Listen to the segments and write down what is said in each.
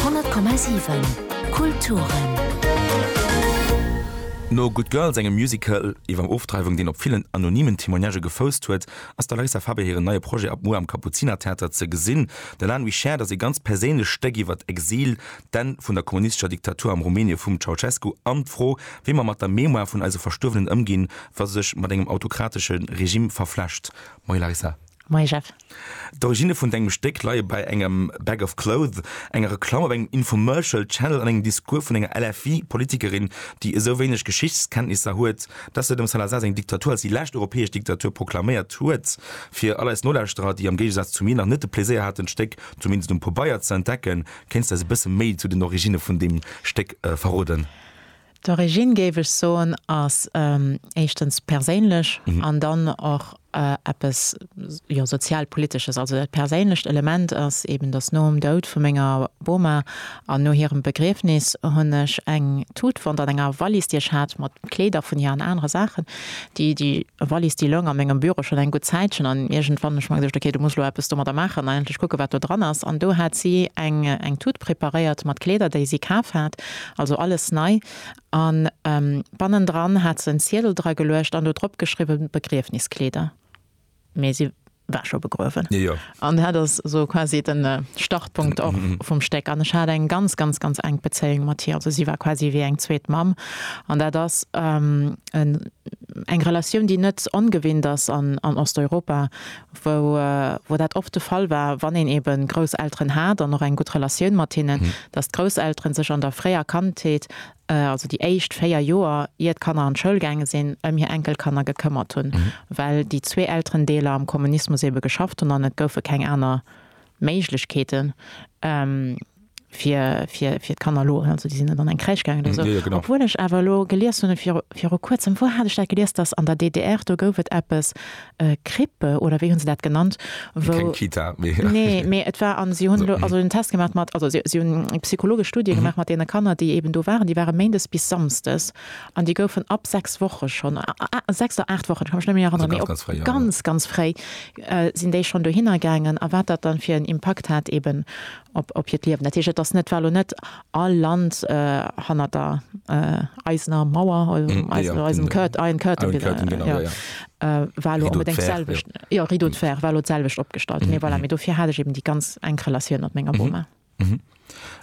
100,7 Kulturen. No Good Girls, engem Musical iwwer Ofdreiwung, deen op villen anonymen Témoignagë gefousst huet, ass der Larissa Faber hiren neie Projet ab muer am Kapuzinertheater ze gesinn. Den Anne Wichert ass ee ganz perséinlecht Stéck iwwer d'Exil, d'Enn vun der kommunistescher Diktatur am Rumänie vum Ceausescu an d'Fro, wéi mer mat der Mémoire vun eise Verstuerwenen ëmginn, wa se sech mat engem autokratesche Regimm verflecht. Moie Larissa. Moie Jeff. D'Originne vun dengem Stéck leie bei engem Bag of Clothes, enger Reklamm op engem Infomercial Channel an engem Discours vun enger LFI-Politikerin, déi esou wéineg Geschichtskenntnisser huet, dass se dem Salazar seng Diktatur als déi lescht europäesch Diktatur proklaméiert huet. Fir all eis Nolauschterer, déi am Géigesaz zu mir nach net de Pläséier haten d'Stéck zumindest um Pobeier ze entdecken, kéints de eis e bësse méi zu den Originne vun deem Stéck verroden? D'Origine, géif ech soen, ass éischtens perséinlech an dann och eppes, jo, sozialpolitesches. Also dat perséinlecht Element ass eeben, datt nom Doud vu menger Boma an no hirem Begriefnis hunn ech eng Tut fonnt an enger Wallis, déi ech hat, mat Kleeder vun hir an anere Saachen. Déi Wallis, déi loung a mengem Büro schonn eng gutt Zäitchen an iergendwann hunn ech mer gesot, ok, du muss elo eppes domadder maachen an endlech kucke wat do dran ass. An do hat si eng Tut preparéiert mat Kleeder, déi si kaf hat Also alles nei, an bannendran hat se en Ziedel dra geluecht an do drop geschriwwen Begriefniskleeder, mee si war scho begruewen. An dat ass esou quasi de Startpunkt och vum Stéck. An ech hat eng ganz, ganz, ganz enk Bezéiung mat hir, also si war quasi wéi eng zweet Mamm. An dat ass eng Relatioun, déi net ongewinnt ass an Osteuropa, wou dat oft de Fall war, wann een ebe Grousselteren hat an och eng gutt Relatioun mat hinnen, dass d'Grousselteren sech an der fréier Kandheet, also déi éischt véier Joer, ier d'Kanner an d'Schoul gaange sinn, ëm hir Enkelkanner gekëmmert hunn, well déi zwee Elterendeeler am Kommunismus ebe geschafft hunn an et goufe keng aner Méiglechkeeten. fir, fir, fir d'Kanner elo, also déi sinn net an eng Crèche gaangen oder esou. Jo, jo, genau. Obwuel ech awer elo gelies hunn, viru, viru Kuerzem, wou hat ech dat gelies, dass an der DDR, do gouf et eppes, e, Krippe oder wéi hunn se dat genannt, wou. Keng Kita, mee. Nee, mee et war, an si hunn elo also en Test gemaach mat, also si, si hunn eng psychologesch Studie gemaach mat deene Kanner, déi eben do waren, déi ware méindes bis samsdes an déi goufen ab sechs Woche schonn, a, a, sechs oder aacht Wochen, ech ka mech net méi eranneren, mee op ganz, ganz fréi, sinn déi schonn dohinner gaangen a wat dat dann fir en Impakt hat eben Op hiert Liewen. Dat heescht, et ass net, war elo net all Land hannert der eisener Mauer, eisem Curtain, Iron Curtain, war elo onbedéngt d'selwecht, jo, Rideau de fer, war elo d'selwecht opgestallt. Mee voilà, mee dofir hat ech eben déi ganz enk Relatioun mat menger Boma.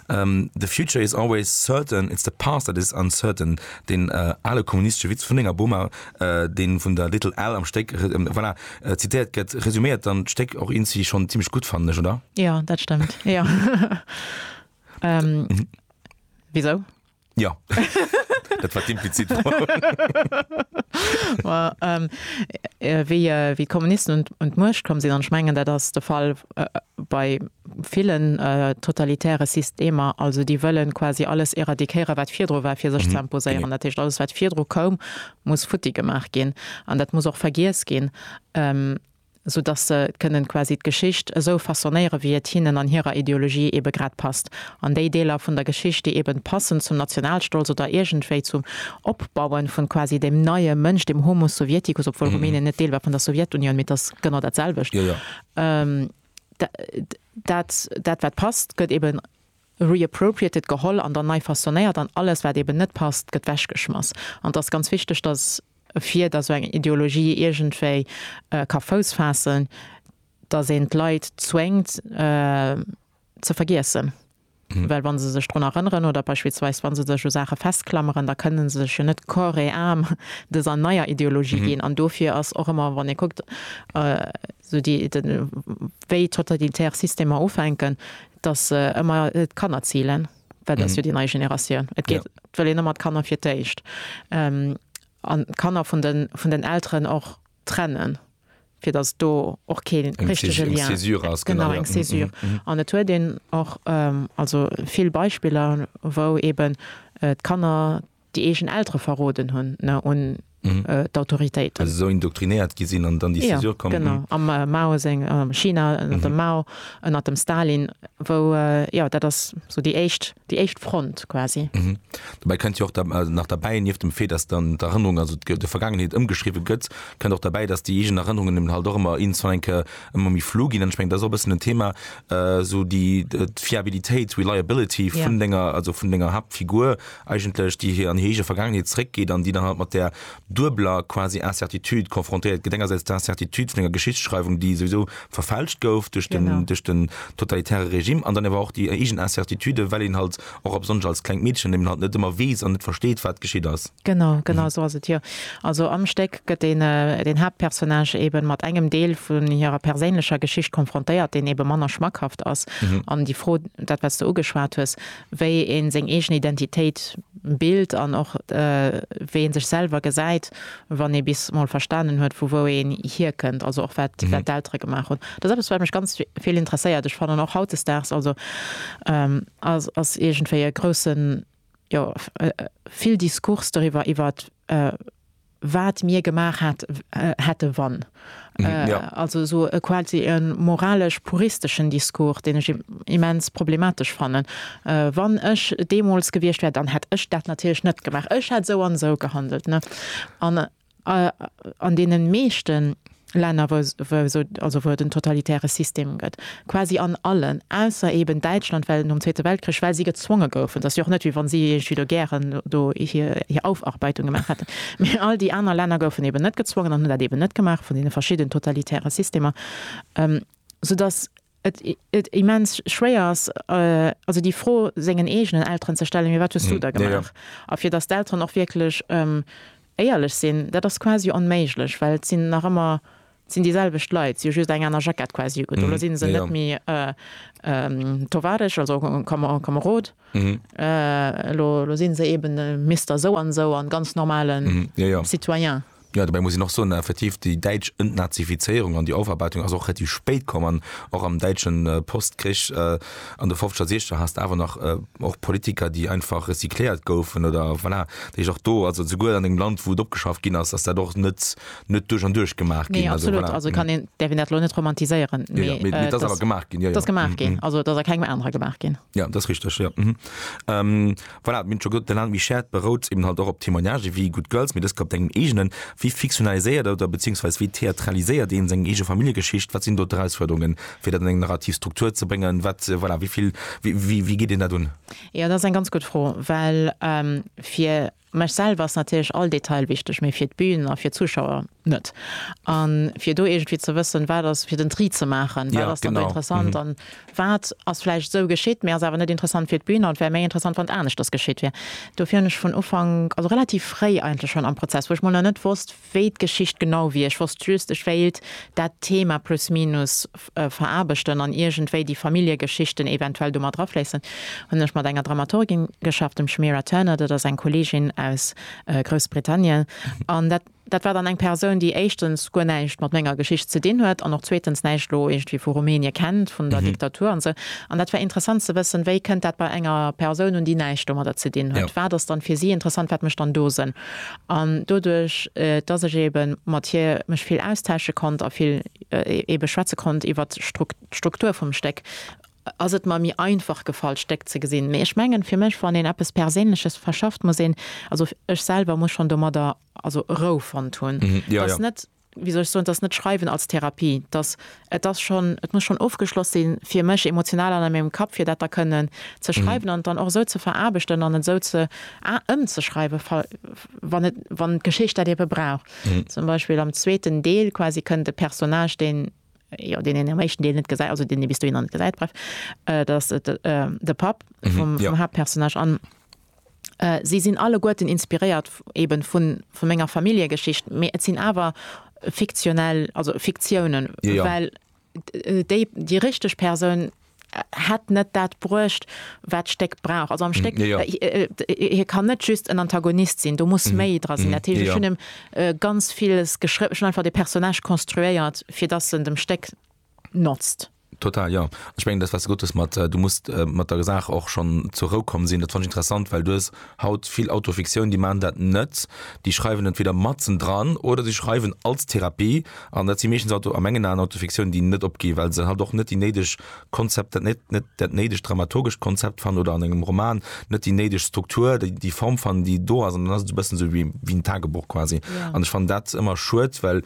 The future is always certain, it's the past that is uncertain, deen ale kommunistesche Witz vun denger Boma, deen vun der Little Al am Stéck, voilà, zitéiert gëtt, resuméiert dann d'Stéck och eenzi schonn zimmlech gutt, fannen ech, oder? Jo, dat stëmmt, jo. Wisou? Jo, dat war d'implizit Fro. Ma wéi d'Kommunisten un d'Muecht komm sinn, an ech mengen, dat ass de Fall bei villen totalitäre Systemer, also déi wëllen quasi alles éradiquéieren wat virdru war fir sech ze imposéieren. Dat heescht alles wat virdru koum muss futti gemaach ginn an dat muss och vergiess ginn, sou dass se kënnen quasi d'Geschicht esou façonnéieren wéi et hinnen an hirer Ideologie ebe grad passt. An déi Deeler vun der Geschicht déi eben passen zum Nationalstolz oder iergendwéi zum Opbauen vun quasi dem neie Mënsch, dem Homo sovieticus, obwuel Rumänien net Deel war vun der Sowjetunioun, mee et ass genau dat selwecht, dat, dat wat passt, gëtt eben reappropriated, geholl an dann nei façonnéiert an alles wat eben net passt, gëtt wechgeschmass. An et ass ganz wichteg, datt fir datt esou eng Ideologie iergendwéi ka Fouss faassen, datt een d'Leit zwéngt ze vergiessen. Well wa se sech drun erënneren oder beispillsweis wa se sech u Saache festklameren, da kënne se sech jo net corps et âme dëser neier Ideologie ginn. An dofir ass och ëmmer, wann ee kuckt, esou déi, wéi totalitär Systemer ufänken, datt se ëmmer d'Kanner zilen, well dat ass jo déi nei Generatioun. Et geet, et wëll een ëmmer d'Kanner fir d'éischt an d'Kanner vun den Elteren och. trennen, fir datt et do och kee richtege Lien, genau, eng Césure. An et huet een och also vill Beispiller, wou eeben d'Kanner déi eegen Eltere verroden hunn un d'Autoritéiten. Also esou indoktrinéiert gi sinn an dann déi Césure kommen. Jo, genau, am Mao seng China, ënnert dem Mao, ënnert dem Stalin, wou, jo, dat ass esou déi éischt Déi éischt Front quasi. Mhm. Dobäi kënnt jo och nach derbäi, nieft dem Fait, datt dann d'Erënnerung, also d'Vergaangenheet ëmgeschriwwe gëtt, kënnt och derbäi, datt déi eegen Erënnerungen eben halt och ëmmer iergendzwann eng Kéier ëmmer méi flou ginn. An ech mengen, dat ass och e bëssen en Thema, esou déi d'Fiabilitéit, reliability, vun denger, also vun denger Haaptfigur eigentlech, déi an hir eege Vergaangenheet zeréckgeet an déi dann halt mat där, duebeler quasi Incertitude confrontéiert gëtt, engersäits d'Incertitude vun enger Geschichtsschreiwung, déi souwisou verfälscht gouf duerch den, duerch den totalitäre Regime, an dann awer och déi eegen Incertitude, well een halt och a besonnesch als klengt Meedchen eben halt net ëmmer weess an net versteet, wat geschitt ass. Genau, genau esou ass et jo. Also am Stéck gëtt deen, deen Haaptpersonnage eben mat engem Deel vun hirer perséinlecher Geschicht confrontéiert, deen eben manner schmackhaft ass. An déi Fro, dat wat s de ugeschwat hues, wéi ee seng eegen Identitéit bilt an och wéi ee sech selwer gesäit, wann ee bis mol verstanen huet, vu wou een hierkënnt, also och wat d'Eltere gemaach hunn. Dat ass eppes, wat mech ganz vill interesséiert. Ech fannen och hautdesdaags, also ass iergendwéi e groussen, jo, vill Diskurs doriwwer, iwwer wat mir gemaach hat, hätte wann. Also esou e quasi e moralesch-puristeschen Discours, deen ech immens problematesch fannen. Wann ech deemools gewiescht wär, dann hätt ech dat natierlech net gemaach. Ech hätt esou an esou gehandelt. An an deene meeschten. Länner, wou esou, also wou et en totalitäre System gëtt, quasi an allen, ausser eben Däitschland, well nom Zweete Weltkrich, well si gezwonge goufen, et ass jo och net, wéi wann si iergendwéi do gären do hir Aufarbeitung gemaach hätten, mä all déi aner Länner goufen eben net gezwongen an hunn dat eben net gemaach, vun deene verschidden totalitäre Systemer, soudass. et immens schwéier ass, also déi Fro sengen eegenen Elteren ze stellen, mee wat hues du da gemaach? A fir datt d'Elteren och wierklech éierlech sinn, dat ass quasi onméiglech, well et sinn nach ëmmer, et sinn déi selwecht Leit, si hu just eng aner Jackett quasi ugedoen, elo si se net méi Tovaresch, also Kamerod, elo si se eeben Mister Souansou a ganz normale Citoyen. Jo, dobäi muss een och soen, effektiv, déi däitsch Entnazifizéierung an déi Aufarbeitung ass och relativ spéit komm an och am däitsche Postkrich an de Fofzeger, Siechzeger has de awer nach och Politiker, déi einfach recycléiert goufen oder voilà. Dat heescht och do, also souguer an engem Land, wou et opgeschaaft ginn ass, ass dat och net net duerch an duerch gemaach ginn. Nee, absolut, also kann een, däerf een dat elo net romantiséieren, mee et ass gemaach ginn. Jo, jo. Et ass gemaach ginn, also et ass a kengem anere gemaach ginn. Ja, dat ass richteg, jo. Mhm. Ähm, voilà, mir hunn et scho gesot, de Land Michèd berout eben halt och op Témoignage wéi Good Girls, mee dës Kéier op dengem eegenen. Wéi fiktionaliséiert oder beziehungsweise wéi theatraliséiert een seng eege Familljegeschicht? Wat sinn do d'Erausfuerderungen, fir dat an eng narrativ Struktur ze bréngen? Wat, voilà, wéi vill, wéi, wéi, wéi geet een dat un? Jo, dat ass eng ganz gutt Fro, well fir Mech selwer ass natierlech all Detail wichteg, mee fir d'Bün a fir d'Zuschauer net. A fir do iergendwéi ze wëssen, wat ass, fir den Tri ze maachen, wat ass dann do interessant an wat ass vläicht esou geschitt, mee ass awer net interessant fir d'Bün an et wär méi interessant, wann et aneschters geschitt wier. Dofir hunn ech vun Ufank, also relativ fréi eigentlech schonn am Prozess, wou ech mol nach net wosst, wéi d'Geschicht genau wier. Ech wosst just, ech wéilt dat Thema plus minus veraarbechten an iergendwéi déi Familljegeschichten eventuell do mat erafléissen. Hunn ech mat enger Dramaturgin geschafft, dem Shemira Turner, dat ass eng Kolleegin aus Groussbritannien, an dat dat war dann eng Persoun, déi éischtens guer näischt mat menger Geschicht ze dinn huet an och zweetens näischt elo iergendwéi vu Rumänien kennt, vun der Diktatur an esou. An dat war interessant ze wëssen, wéi kënnt dat bei enger Persoun un, déi näischt domadder ze dinn huet. Wat ass dann fir si interessant, wat mécht dann do Sënn? An doduerch, dass ech eebe mat hir mech vill austausche konnt a vill eebe schwätze konnt iwwer d'Struktur vum Stéck, ass et mer méi einfach gefall, d'Stéck ze gesinn. Mee ech mengen, fir mech, wann een eppes Perséinleches verschafft, muss een, also ech selwer, muss schonn domadder also Rou fonnt hunn, dass net. wéi soll ech soen, et ass net Schreiwen als Therapie, et ass, et ass schonn, et muss schonn ofgeschloss sinn, fir mech emotional an a mengem Kapp, fir dat da kënnen ze schreiwen an et dann och esou ze veraarbechten an et esou ze ëmzeschreiwen, fa, wann et, wann d'Geschicht dat ebe brauch. Zum Beispill am zweeten Deel quasi kënnt e Personnage, deen, jo, deen een am éischten Deel net gesäit, also deen ee bis dohinner net gesäit, bref, dat ass de Papp vum Haaptpersonnage an, Si sinn alleguerten inspiréiert eben vun menger Familljegeschicht, mee et sinn awer fiktionell, also Fiktiounen, well déi, déi richteg Persoun hätt net dat bruecht, wat d'Stéck brauch. Also am Stéck, hie kann net just en Antagonist sinn, do muss méi dra sinn. Dat heescht, ech hunn em ganz villes geschriwwen, ech hunn einfach de Personnage konstruéiert, fir dass en dem Stéck, notzt. Total, jo. Ech mengen dat wat s de gesot hues mat du muss mat der Saach och schonn zur Rou komm sinn, dat fann ech interessant, well du hues haut vill Autofiktioun, déi maachen dat net, déi schreiwen entweder matzen dran oder si schreiwen als Therapie an dat si meeschtens Auto, a mengen Aen, Autofiktiounen, déi net opginn, well se halt och net déi néideg Konzept, dat net net dat néidegt dramaturgescht Konzept fannen oder an engem Roman net déi néideg Struktur, déi déi Form fannen, déi do ass an dann ass et e bëssen esou wéi wéi en Tagebuch quasi an ech fannen dat ëmmer schued, well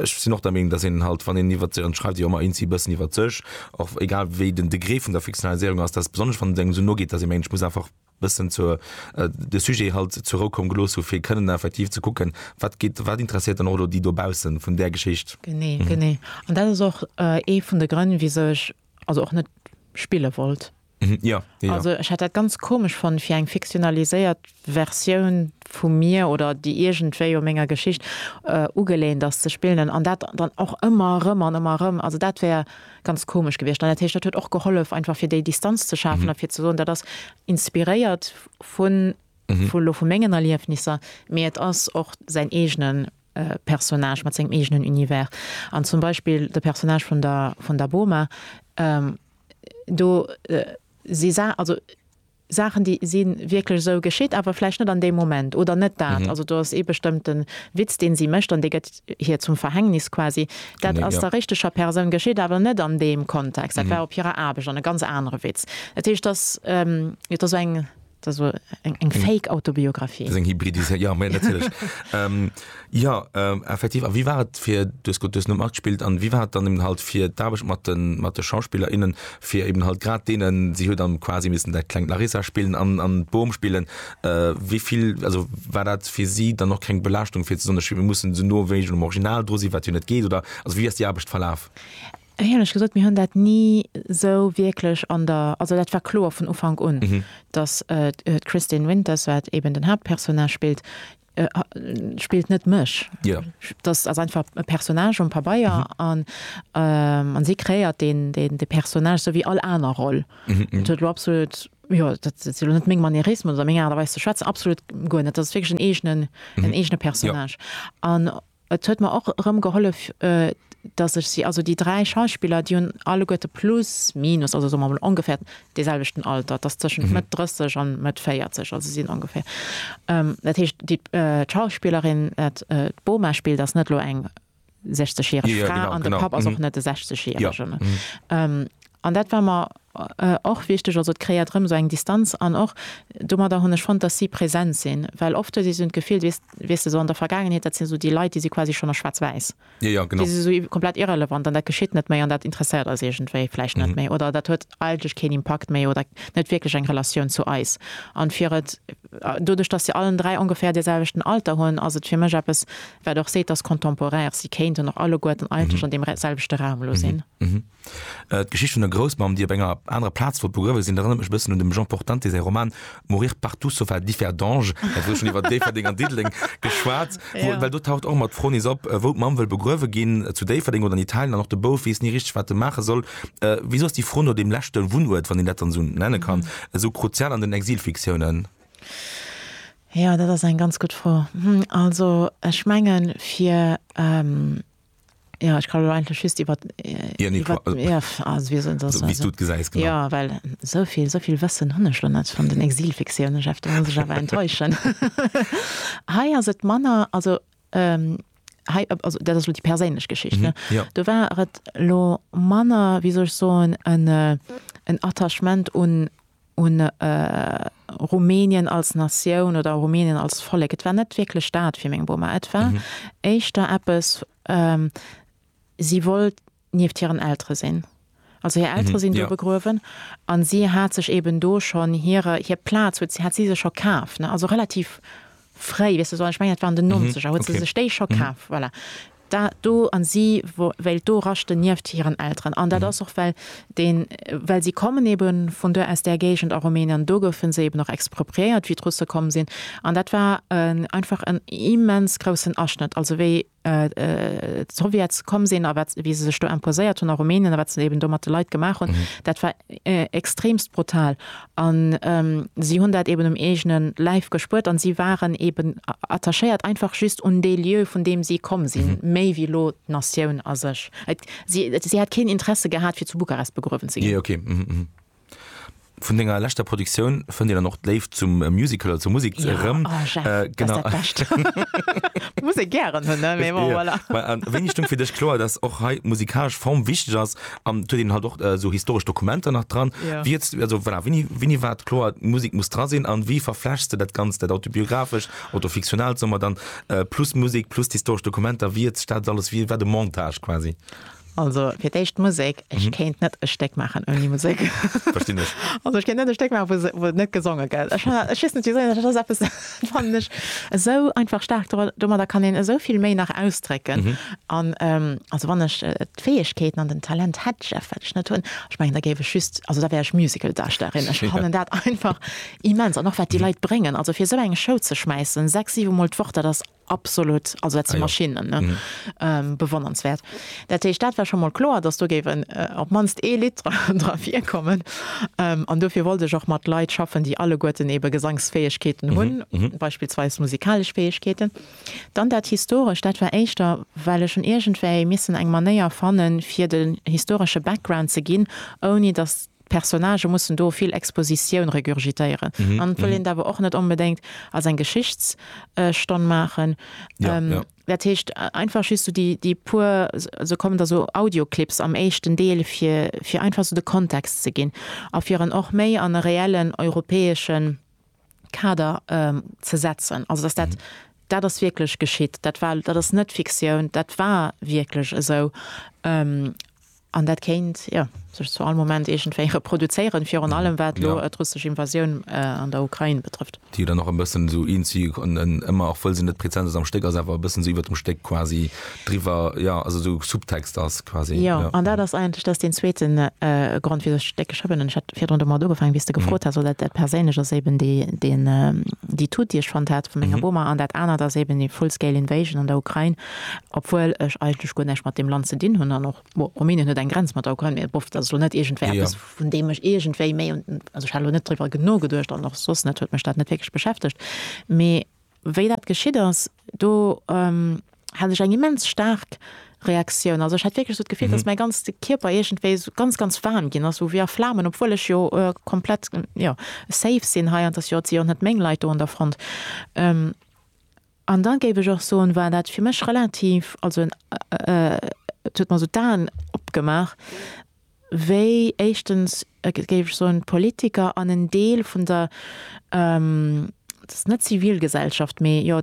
Ech sinn och der Meenung, datt een halt, wann een iwwert, an et schreift ee jo ëmmer inzii e bëssen iwwert sech, och egal wéi den Degré vun der Fiktionaliséierung ass, datt besonnesch wann et engem esou no geet, datt ee mengt, ech muss einfach e bëssen zur, de Sujet halt zur Rou komm gelooss hu fir kënnen effektiv ze kucken, wat geet, wat interesséiert dann och elo déi dobaussen vun där Geschicht. Genee, genee. An dat ass och ee vun de Grënn, wisou ech also och net spille wollt. Ja, ja. Also ech hätt dat ganz komesch fonnt fir eng fiktionaliséiert Versioun vu mir oder déi iergendwéi u menger Geschicht ugelehnt ass ze spillen an dat dann och ëmmer erëm an ëmmer erëm. Also dat wär ganz komesch gewiescht an dat heescht dat huet och gehollef einfach fir déi Distanz ze schafen a fir ze soen dat ass inspiréiert vu vu elo vu mengen Erliefnisser, mee et ass och säin eegene Personnage mat sengem eegenen Univers. An zum Beispill de Personnage vun der vun der Boma, do si Sa, also Saachen, déi si wierklech esou geschitt, awer vläicht net an deem Moment oder net dat. Also do ass ee bestëmmte Witz, dee si mécht an dee gëtt hir zum Verhängnis quasi. Dat ass der richteger Persoun geschitt, awer net an deem Kontext. Dat war op hirer Aarbecht an e ganz anere Witz. Dat heescht, dass et da sou eng. Dat war eng, eng Fake-Autobiographie. Dat ass eng Hybridisé, ja, mä natierlech. ähm, ja, ähm, effektiv. A wéi war et fir, du hast grad, du hast net matgespillt, an wéi war et dann eben halt fir d'Aarbecht mat de, mat de SchauspillerInnen, fir eben halt grad deenen, si huet dann quasi missen dat klengt Larissa spillen an, an d'Boom spillen, äh, wéi vill, also war dat fir si dann och keng Belaaschtung, fir ze soen, ech muss se no wéi am Original dru sinn, wat jo net geet, oder, also wéi ass déi Aarbecht verlaf? Éierlech gesot, mir hunn dat ni esou wierklech an der, also dat war kloer vun Ufank un, dass d'Kristin Winters, wat eben den Haaptpersonnage spillt, spillt net mech, dass ass einfach e Personnage um Pabeier an si kreéiert dee Personnage esou wéi all aner Roll. Dat huet elo absolut, jo dat si elo net meng Manierismen oder meng Aart a Weis ze schwätzen, absolut guer net, dat ass wierklech en eegene Personnage. Et huet mer och erëm gehollef, dass ech si, also déi dräi Schauspiller, déi hunn alleguerte plus minus, also soe mer emol ongeféiert dee selwechten Alter, dass tëschent Mëtt 30 a Mëtt 40, also si sinn ongeféier, dat heescht d'Schauspillerin, d'Boma spillt, ass net elo eng 60 järeg Fra an de Papp ass och net e 60 järegen. An dat war mer och wichteg. Also et kréiert erëm esou eng Distanz. An och domadder hunn ech fonnt, dass si present sinn. Well oft hues de esou d'Gefill, weess de, esou an der Vergaangenheet, dat sinn esou déi Leit, déi si quasi schonn a schwaarz-wäiss. Déi si esou komplett irrelevant an dat geschitt net méi an dat interesséiert eis iergendwéi vläicht net méi oder dat huet eigentlech keen Impakt méi oder net wierklech eng Relatioun zu eis. An fir et, doduerch dass se allen dräi ongeféier dee selwechten Alter hunn, ass et fir mech eppes, wat och seet, dass contemporaires si kéinten och alleguerten eigentlech an deem selwechte Raum elo sinn. D'Geschicht vun der Groussmamm, déi op enger anerer Plaz wollt begruewe sinn, erënnert mech e bëssen un dem Jean Portante säi Roman Mourir partout sauf à Differdange, mä et gëtt schonn iwwer Déifferdeng an Diddeleng geschwat, wou, well do taucht och ëmmer d'Fro nees op, wou d'Mamm wëll begruewe ginn, zu Déifferdeng oder an Italien, an och de Bouf weess ni richteg, wat e maache soll. Wisou ass déi Fro no deem leschte Wunnuert, wann een dat dann esou nenne kann, esou kruzial an den Exilfiktiounen? Jo, dat ass eng ganz gutt Fro. Also, ech mengen, fir. Jo, ech kann elo eigentlech just iwwer, Ja, nee, iwwer, quasi. jo, pff, also wéi soll een soss, Wéi s du et gesäis, genau. Jo, well esou vill, esou vill Wëssen hunn ech elo net vun den Exilfiktioune, Jeff, do muss ech awer enttäuschen. Hei ass et manner, also hei, also dat ass elo déi perséinlech Geschicht, ne, do war et elo manner, wéi soll ech soen, en Attachement un, un Rumänien als Natioun oder Rumänien als Vollek. Et war net wierklech dat fir meng Boma. Et war éischter eppes, si wollt nieft hiren Eltere sinn. Also hir Eltere sinn do begruewen a si hat sech eeben do schonn hir Plaz huet si, hat si sech scho kaf, also relativ fréi, weess de, ech mengen dat war an den Nonzeger, huet se sech déi scho kaf, voilà. dat do, a si wéilt do raschten nieft hiren Elteren, an dat ass och well den, well si kommen ebe vun do, aus där Géigend a Rumänien, an do goufe se eben och expropriéiert, wéi d'Russe komm sinn, an dat war einfach en immens groussen Aschnëtt, also wéi d'Sowjets komm sinn a wat, wéi se sech do imposéiert hunn a Rumänien a wat se eben do mat de Leit gemaach hunn, dat war. extremst brutal an si hunn dat eben um eegenen Läif gespuert an si waren eben attachéiert einfach just un dee Lieu vun deem si komm sinn, méi wéi lo d'Natioun a sech. Si hätt keen Interesse gehat fir zu Bukarest begruewen ze ginn. Jee, okay. Vun denger leschter Produktioun fënnt een dann och d'Léift zum Musical oder zur Musek erëm. Jo, oh Jeff, dat ass dat Bescht. Muss ee gären hunn, ne, mee bon, voilà. Wéini stoung fir dech kloer, dass och hei d'musikalesch Form wichteg ass? an huet een halt och äh, so historesch Dokumenter nach dran. Ja. Wie jetzt, also voilà, wini, wini war kloer Musik muss dra sinn an wie verflechst du dat ganz dat autobiographesch oder fiktional sommer dann äh, plus Musik plus historesch Dokumenter wie jetzt staat alles wie war de Montage quasi. Also fir d'éischt Musek, ech mhm. kéint net e Stéck machen ouni Musik. Verstinn ech. Also ech kéint net e Stéck machen, wo, wo net gesonge gëtt. Ech wissen net wieso, ech ass eppes fand ech esou einfach stark, domadder kann een esou vill méi nach ausdrécken. Mhm. An ähm, also wann ech äh, D'Fäegkeeten an den Talent hätt Jeff, wat ech net hunn. Ech mengen, da géif ech just, also da wär ech Musicaldarstellerin. Ech fannen dat einfach immens. An och wat déi Leit bréngen, also fir esou eng Show ze schmäissen, sechs, siwe Mol d'Woch, dat ass absolut, also dat si Maschinnen, ne? Bewonnernswäert. Dat heescht, dat war scho mol kloer, datt do géif en, op d'mannst ee Lidd dra virkommen. An dofir wollt ech och mat Leit schaffen, déi alleguerten eebe Gesangsfäegkeeten hunn, beispillsweis musikalesch Fäegkeeten. Dann dat Historescht, dat war éischter, well ech hunn iergendwéi missen eng Manéier fannen, fir de historesche Background ze ginn, ouni datt d'Personnagë mussen do vill Expositioun regurgitéieren. An et wëll een et awer och net onbedéngt als eng Geschichtsstonn maachen. Dat heescht, einfach just esou déi puer, se kommen da sou Audioclips am éischten Deel, fir einfach esou de Kontext ze ginn a fir en och méi an e reellen europäeschen Kader ze setzen. Also dass dat, dat ass wierklech geschitt, dat war, dat ass net Fiktioun, dat war wierklech esou. An dat kéint, jo, sech zu all Moment iergendwéi reproduzéieren, virun allem wat elo d'russesch Invasioun an der Ukrain betrëfft. Déi jo dann och e bëssen esou, iergendwéi ëmmer, och wëll se net präzent ass am Stéck, ass awer e bëssen esou iwwert dem Stéck quasi. Driwwer, jo, also esou Subtext ass quasi. Jo, an dat ass eigentlech dat ass deen zweeten Grond, wisou ech dat geschriwwen hunn. Ech hat virdrun domat ugefaangen, wéi s de gefrot has, well dat dat Perséinlech ass eben déi deen déi Tut, déi ech fonnt hat vum Inga Boehmer, an dat anert ass eben déi Full-Scale Invasion an der Ukrain, obwuel ech eigentlech guer näischt mat deem Land ze dinn hunn an och, bon, Rumänien huet eng Grenz mat der Ukrain, mee bof, dat ass elo net iergendwéi eppes, vun deem ech iergendwéi méi un, also ech hat elo net driwwer genuegeduecht an och soss net, huet mech dat net wierklech beschäftegt, mee. Wéi dat geschitt ass, do hat ech eng immens staark Reaktioun. Also ech hat wierklech esou d'Gefill, datt mäi ganze Kierper iergendwéi esou ganz, ganz waarm ginn ass, esou wéi a Flamen, obwuel ech jo komplett, jo, safe sinn hei an et ass jo, et sinn jo net meng Leit do an der Front. An da géif ech och soen, war dat fir mech relativ, also et huet mer esou d'Aen opgemaach, wéi éischtens, et géif ech soen, d'Politiker an en Deel vun der, et ass net Zivilgesellschaft, mee jo,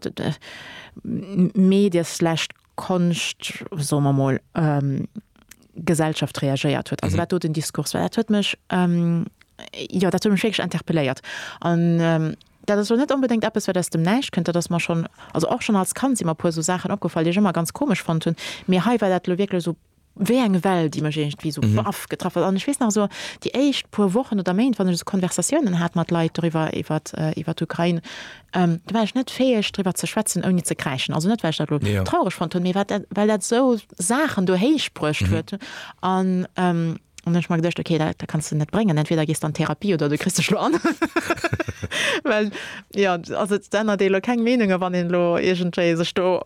Medie slash Konscht, soe mer emol, Gesellschaft reagéiert huet. Also wat do den Diskurs war, dat huet mech, jo, dat huet mech wierklech interpelléiert. An dat ass elo net onbedéngt eppes, wat aus dem Näischt kënnt, dat ass mer schonn, also och schonn als Kand si mer e puer esou Saachen opgefall, déi ech ëmmer ganz komesch fonnt hunn, mee hei war dat elo wierklech esou wéi eng Well, déi mech iergendwéi esou baff getraff huet. An ech weess nach esou déi éischt puer Wochen oder Méint, wann ech esou Konversatiounen hat mat Leit doriwwer, iwwert, iwwert d'Ukrain, do war ech net fäeg driwwer ze schwätzen ouni ze kräischen. Also net well ech dat elo traureg fonnt hunn, mee wat dat, well dat esou Saachen do héichbruecht huet. An An ech mer geduecht okay dat kanns de net bréngen, entweder gees de an Therapie oder du kriss dech elo an. Well jo also et ännert ee elo keng Meenunge wann een elo iergendwéi sech do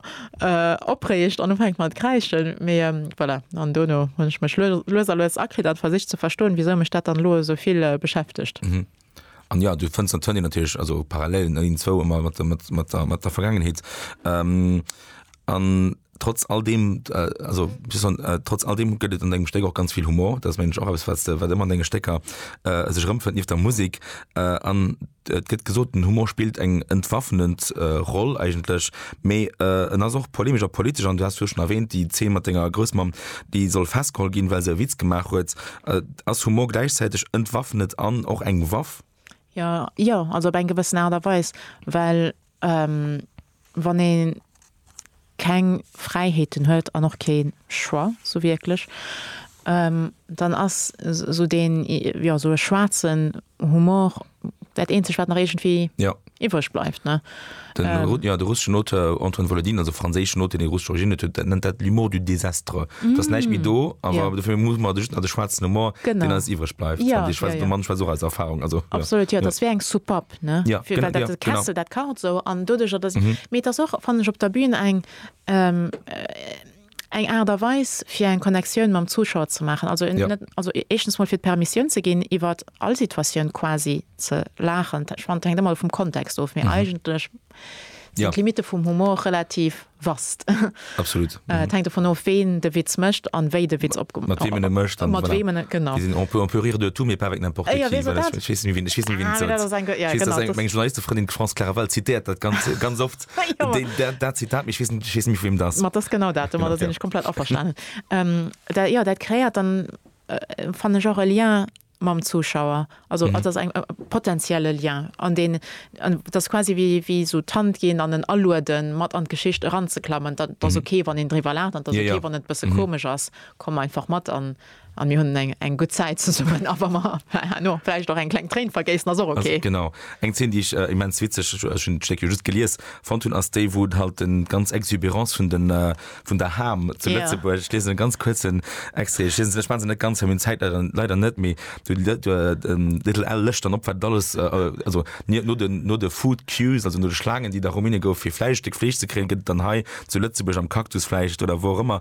opreegt an ufänkt mat kräischen. Mee voilà an dono hunn ech mech lues a lues akritt an versicht ze verstoen wisou mech dat dann elo esou vill beschäftegt. An jo, du fënns d'Antoine natierlech, also Parallelen, een, zwou ëmmer mat der, mat, mat der, mat der Vergaangenheet. Ähm, an trotz all deem, also wéi soll ech soen, trotz all deem gëtt et an dengem Stéck och ganz vill Humor. Dat ass, mengen ech, och eppes, wat s de, wat ëmmer an denge Stécker sech erëmfënnt, nieft der Musek. An et gëtt gesot, den Humor spillt eng entwaffnend Roll eigentlech, mee en ass och polemesch a politesch. An du has virdu schon erwähnt, déi Zeen mat denger Groussmamm, déi soll festgeholl ginn, well se e Witz gemaach huet. Ass Humor gläichzäiteg entwaffnet an och eng Waff? Jo, jo, also op eng gewëssen Aart a Weis, well wann ee keng Fräiheeten huet an och kee Choix sou wierklech, dann ass sou deen, jo, sou e schwaarzen Humor dat eenzeg wat nach iergendwéi ja. iwwreg bleift. Ne? Den, ähm, ja, de russeschen Auteur Antoine Volodin, also franséischen Auteur, den russesch Origine huet, dat nennt dat l'humour du désastre. Mm. Dat näicht méi do, awer ja. dofir muss man duerch de schwarzen Humor, genau. den als iwwreg bleift. Ja, ja, ja. Mann schwa als Erfahrung. Also, Absolut, ja, ja. das wär eng Supap. Ne? Ja, Für, genau, ja, Kessel, genau. dat kart so an dodeger, dat mm -hmm. mir das och, fand ich, op der Bühne eng ähm, äh, eng Aart a Weis fir eng Connectioun mam Zuschauer ze maachen, also net, also éischtens mol fir d'Permissioun ze ginn iwwert all Situatioun quasi ze laachen, ech fannen et hänkt ëmmer vum Kontext of, mee eigentlech sinn d'Limitte vum Humor relativ vast, et hänkt dovun of ween de Witz mécht an wéi de Witz opge, mat weem en e mécht, an mat weem en e, genau, déi sinn, on peut, on peut rire de tout mais pas avec n'importe qui, ech weess net wien, ech weess net wien, ech weess net wien, et sollt, ech weess, datt eng, meng Journalistefrëndin France Claraval zitéiert dat ganz, ganz oft, Dat Zitat, mee ech weess net, ech weess net méi vu wiem dat ass. Ma dat ass genau dat do, ma da sinn ech komplett averstanen. Da, jo, dat kreéiert dann, fannen ech, och e Lien mam Zuschauer. Also et ass eng, e potentielle Lien, an deen, an et ass quasi wéi, wéi esou d'Hand ginn an en alueden, mat an d'Geschicht eranzeklammen. Et ass ok, wann een driwwer laacht, an et ass ok, wann et e bësse komesch ass, komm einfach mat an. An mir hunn eng eng gutt Zäit zesummen. A wa mer herno vläicht och eng kleng Tréin vergéissen, ass och ok. Genau. Eng Zeen, déi ech immens witzeg, ech hunn d'Stéck jo just gelies, fonnt hunn, ass déi, wou halt déi ganz Exubérance vun den, vun der Ham zu Lëtzebuerg, ech liesen e ganz kuerzen Extrait, ech liesen se, ech maache se net ganz, well meng Zäit leider, leider net, mee de Little Al lécht dann op, wat et alles, also no den, no de Food Queues, also no de Schlaangen, déi da Rumäne gouf, fir Fläisch, Stéck Fleesch ze kréien, gëtt et dann hei zu Lëtzebuerg am Cactus vläicht oder wou och ëmmer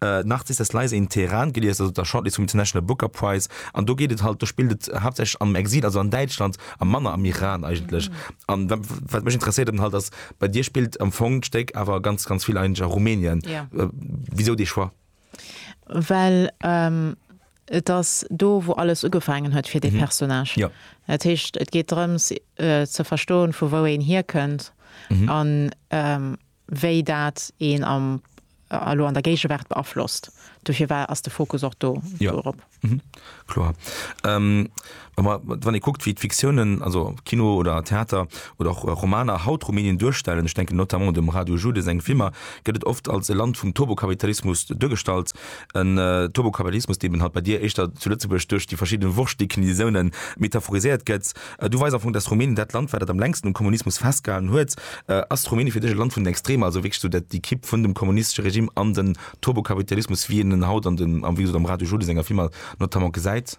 Narcissus Leise in Teheran gelies, also der Shortlist vum International Booker Prize, an do geet et halt, do spillt et haaptsächlech am Exil, also an Däitschland, a manner am Iran eigentlech. An wat mech interesséiert eben halt ass, bei dir spillt am Fong d'Stéck awer ganz, ganz vill eigentlech a Rumänien. Wisou dee Choix? Well et ass do, wou alles ugefaangen huet fir dee Personnage. Dat heescht, et geet drëms ze verstoen, vu wou een hierkënnt an wéi dat een am elo an der Géigewaart beaflosst. Dofir war, ass de Fokus och do dorop. Jo, kloer. Mä wann ee kuckt, wéi d'Fiktiounen, also Kino oder Theater oder och Romaner haut Rumänien duerstellen, ech denken notamment un dem Radu Jude seng Filmer, gëtt et oft als e Land vum Turbokapitalismus duergestallt. En Turbokapitalismus, dee eben halt bei dir éischter zu Lëtzebuerg duerch déi verschidde Wurschtdeclinaisoune metaphoriséiert gëtt. Du weis am Fong, dass Rumänien, dat Land war, dat am längsten um Kommunismus festgehalen huet. Ass Rumänien fir dech e Land vun den Extremer, also wierklech esou déi Kipp vun dem kommunistesche Regime an den Turbokapitalismus, wéi een en haut an den, wéi gesot, am Radio Jodo senger Film notamment gesäit?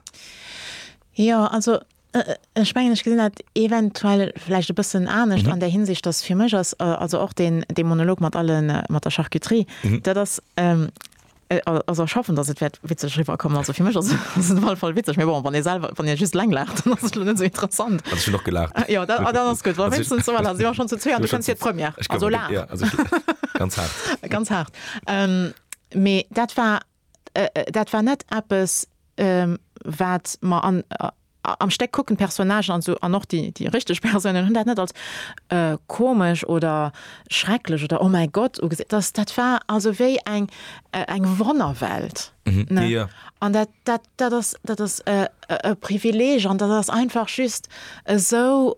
Jo, also ech mengen, ech gesinn dat eventuell vläicht e bëssen anescht an där Hinsicht, dass fir mech ass also och deen Monolog mat der Charcuterie, dat ass Also ech hoffen, datt et wäert witzeg eriwwer kommen. Also fir mech ass et op alle Fall witzeg, mee bon, wann ee selwer, wann ee just eleng laacht, dann ass et elo net esou interessant. Also ech hunn och gelaacht. Jo, da, ah, dann ass gutt. Well wéinstens, voilà, si mer schonn zu zwee an du kënns fir d'Première. Ech kënn, jo, also ech laach ganz haart. Ganz haart. Mee dat war, dat war net eppes, wat mer an, Am Stéck kucken d'Personnagen, an esou, an och déi richteg Persounen, hunn dat net als komesch oder schrecklech oder oh mäi Gott ugesinn. Dat war also wéi eng Wonnerwelt. An dat ass e Privileeg an dat ass einfach just esou.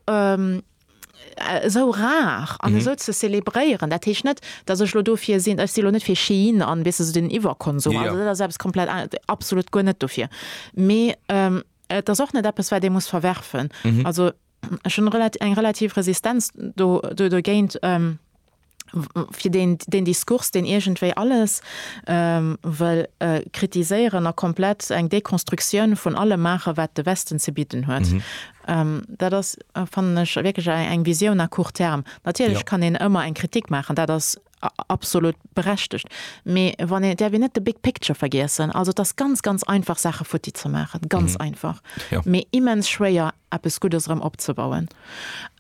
esou rar an esou ze zelebréieren. Dat heescht net, datt ech elo dofir sinn, ech si elo net fir Shein an, weess de, esou den Iwwerkonsum, also dat ass eppes komplett aneres, absolut guer net dofir, mee et ass och net eppes wat ee muss verwerfen. Also ech hunn eng relativ Resistenz do, dogéint. fir deen, deen Diskurs, deen iergendwéi alles wëll kritiséieren a komplett eng Dekonstruktioun vun allem maachen, wat de Westen ze bidden huet. Dat ass, fannen ech, wierklech eng Visioun à court terme. Natierlech kann een ëmmer eng Kritik maachen, dat ass absolut berechtigt, mee wann een, et däerf een net de big picture vergiessen. Also et ass ganz, ganz einfach Saache futti ze maachen, ganz einfach, mee immens schwéier eppes Guddes erëm opzebauen.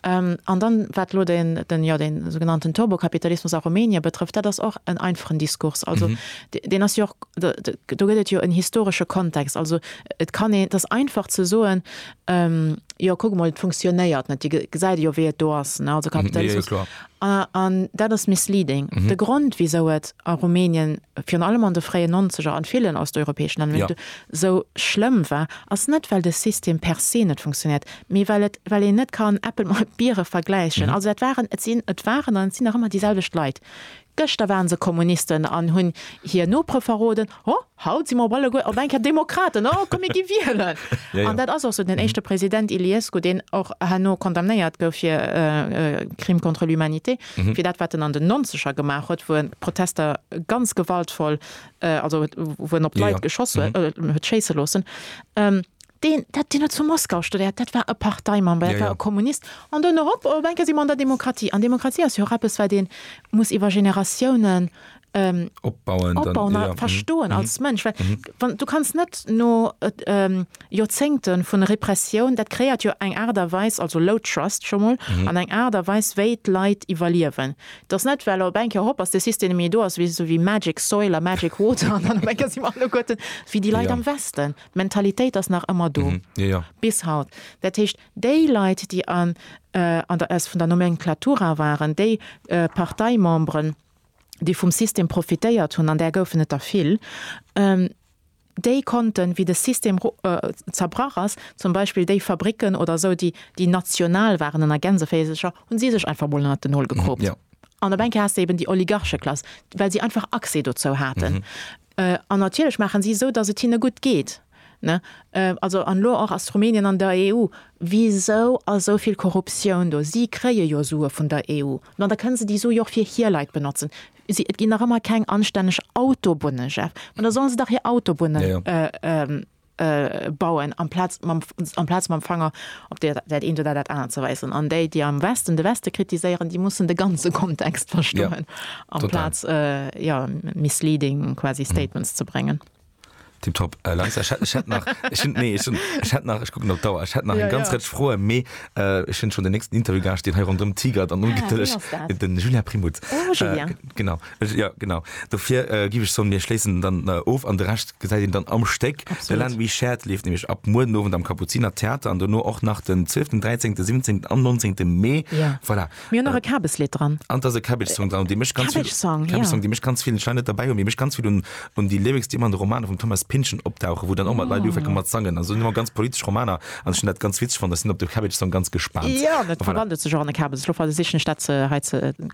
An dann, wat elo den, jo, dee sougenannten Turbokapitalismus a Rumänien betrëfft, dat ass och en einfachen Diskurs. Also deen ass jo och, do gëtt et jo en historesche Kontext. Also et kann een, et ass einfach ze soen, jo kuck emol, et funktionéiert net, Dir gesäit jo, wéi et do ass, ne, also Kapitalismus. An dat ass misleading. De Grond, wisou et a Rumänien, virun allem an de fréien Nonzeger, an villen osteuropäeschen Länner, esou schlëmm war, ass net, well de System per se net funktionéiert, Mee well et, well een net kann Äppel mat Biere vergläichen. Also dat waren, et sinn, et waren an et sinn nach ëmmer déi selwecht Leit. Gëschter ware se Kommunisten an hunn hir Nopere verroden. O, haut si mer op alleguer op eng Kéier Demokraten. O, komm mir gi wielen! An dat ass och esou. Den éischte President Iliescu, deen och herno condamnéiert gouf fir Crime contre l'humanité, fir dat wat en an den Nonzeger gemaach huet, wou en d'Protester ganz gewaltvoll, also wou en op d'Leit geschoss huet, huet schéisse loossen, Deen, dat, deen huet zu Moskau studéiert, dat war e Parteimember, dat war e Kommunist. An dunn erop, op eng Kéier si mer an der Demokratie. An Demokratie ass jo och eppes, wat ee muss iwwer Generatiounen opbauen a verstoen als Mënsch. Well du kanns net no Joerzéngte vun Repressioun, dat kreéiert jo eng Aart a Weis, also low trust scho mol, an eng Aart a Weis, wéi d'Leit iwwerliewen. Et ass net, well op eng Kéier, hop, ass de System net méi do, ass esou wéi magic soil a magic water an dann op eng Kéier si mer alleguerten wéi déi Leit am Westen. D'Mentalitéit ass nach ëmmer do, bis haut. Dat heescht, déi Leit, déi an der vun der Nomenclatura waren, déi Parteimemberen, déi vum System profitéiert hunn, an där goufen et der vill, déi konnten, wéi de System zerbrach ass, zum Beispill déi Fabricken oder esou, déi national waren an der Gänseféisercher, hu si sech einfach mol ënnert den Nol gekroopt. An op eng Kéier has de eben déi Oligarcheklass, well si einfach Accès dozou haten. An natierlech maachen si esou, datt et hinne gutt geet. Also, an elo och ass Rumänien an der EU. Wisou ass esou vill Korruptioun do? Si kréie jo Sue vun der EU. Ma da kënne se déi Su jo och fir hir Leit benotzen. Et ginn nach ëmmer keng anstänneg Autobunne, Jeff. Ma da solle se dach hir Autobunne bauen, amplaz amplaz mam Fanger op dat dat eent oder dat anert ze weisen. An déi, déi am Westen de Weste kritiséieren, déi mussen de ganze Kontext verstoen, amplaz jo misleading quasi Statements ze bréngen. Tipptopp, äh, Lisa, ich hätt, ich hätt nach, ich, hätt- nee, ich, hätt- ich hätt nach, ich gucken op d'Dauer, ich hätt nach Ja, eng ganz ja. Rëtsch Froen, mee äh, ich hunn schon den nächsten Interviewgast, deen hei rondëm tigert an Ah, ungetëlleg, wien ass dat? den Julien Primout. Oh, Julien. Äh, genau, Jo, genau. Dofir géif ech soen, mir schléissen dann of an de Rescht gesäit een dann am Stéck. De Land We Shared leeft nämlech ab muer den Owend am Kapuziner Theater an dono och nach den 12., 13., 17. an 19. Mee. Jo. Voilà. Mir hunn och e Kabeslidd dran. An et ass e Cabbage-Song dran, dee mécht ganz vill. Cabbage-Song, jo. Cabbage-Song, dee mécht ganz vill. Ech war net derbäi, mee dee mécht ganz vill un, un déi Lyrics, déi ëmmer an de Romaner vum Thomas Pynchon opdauchen, wou dann och mat Leit ufänke mat sangen. Also ëmmer ganz politesch Romaner an ech hunn dat ganz witzeg fonnt. Ech sinn op de Cabbage-Song ganz gespaant. Jo, an et verwandelt sech och an e Kabes. Ech louf hei, da sichen ech dat ze, hei ze.